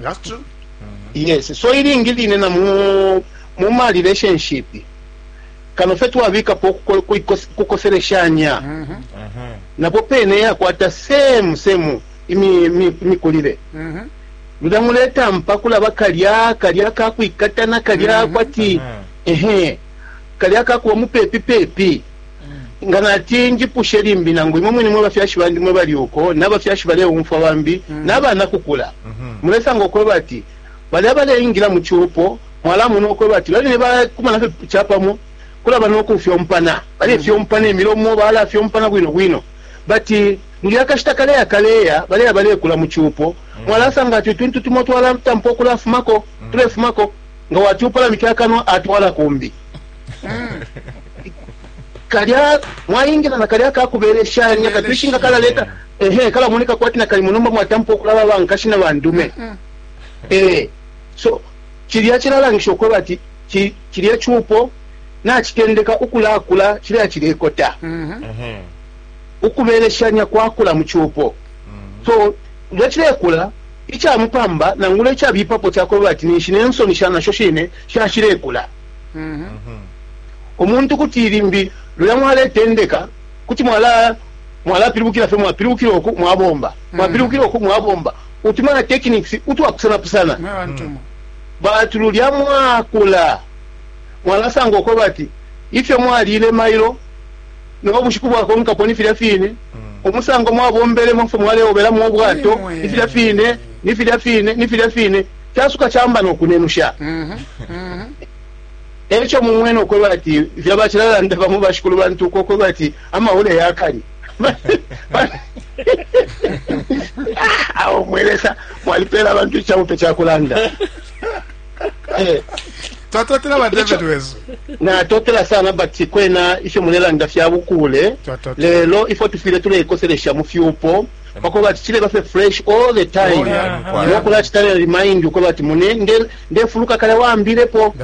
That's true. Mm-hmm. Yes. So ilingi line na mu mu ma relationship kano fe twabikapo kukoseleshanya mm -hmm. mm -hmm. napo pene yakwata same same imikulile mi, mi mm -hmm. luda muleta mpa kulaba kalya kalya kakwikatana kalya mm -hmm. kwati mm -hmm. ehe kalya kakuwa mupepi pepi Nga nati njipushe limbi nangu imwe mwine mwe bafyashi bandi mwe bali uko na bafyashi baleumfwa bambi na banakukula, mulesanga ukweba ati balya baleingila mu cupo mwalamona ukweba ati babene bakumana fye capamo kulaba no kufyompana, balefyompa ne milomo, balafyompana bwino bwino. But ngiya akashita kaleya kaleya baleya balekula mu cupo mwalasanga ati utuntu tumo twalatampa ukulafumako, tulefumako nga wati upalamike akanwa atwala kumbi. Mm. kalya mwaingila na kalya kakubeleshanya katwishinga kalaleta ehe kalamoneka kwati nakalimo nomba mwatampa okulaba bankashi na bandume mm. eh, so cilya cilalangisha okweba ati cilya cupo nacitendeka ukulakula cilya cilekota mm-hmm. ukubeleshanya kwakula mu cupo mm-hmm. so nga cilekula icamupamba nangula icabipapo cakweba ati ninshi nensoni shanasho shine shashilekula mm -hmm. omuntu kuti limbi luya mwaletendeka kuti mwala mwalapilibukila fye mwapilibukila oku mwabomba mm. mwapilibukila oku mwabomba utumana techniques utwapusanapusana mm. batu lulya mwakula mwalasanga uko bati ifyo mwalile mailo no bushiku bwakonkapo ni filya fine mm. umusango mwabombelemo fwe mwaleobelamo obwato ni filya fine ni filya fine ni filya fine casuka caamba no kunenusha. Eco mumwene ukwebati ifyo bacilalanda bamo bashikulu bantu uko ukwebati amahule yakali awo mwelesa mwalipela abantu icabupe cakulanda. Eh. Twatotela ba David wesu. Na totela sana bati kwena ifyo mulelanda fya bukule. Lelo ifyo tufile tulekoselesha mu fyupo. pakweba ati chileba fye fresh all the time nokulachita ne remind ukweba ati mune nde ndefuluka kalya wambilepo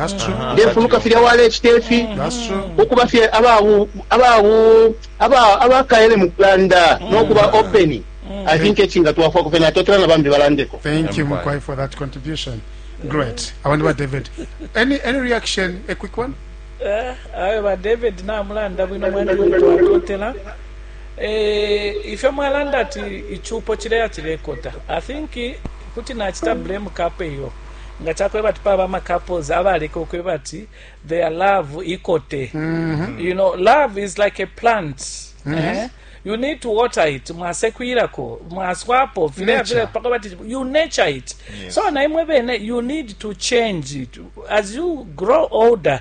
ndefuluka filya walechita ifi ukuba fye ababu ababu aba abakaele mukulanda nokuba open Mm. I think etchinga twafwa kufena totela na bambi balandeko. Thank you Mukwai for that contribution. Great. I wonder what David. Any any reaction a quick one? Eh, uh, ayo ba David na mulanda bwino mwana mtu atotela. Eh, ifyo mwalanda ati icupo cileya cilekota i think kuti nacita blame kape iyo nga cakweba ati paba ama couples abaleka ukweba ati their love ikote mm -hmm. you know love is like a plant mm -hmm. eh? you need to water it mwasekwirako mwaswapo vile vile paka bati you nature it yes. so naimwe bene you need to change it as you grow older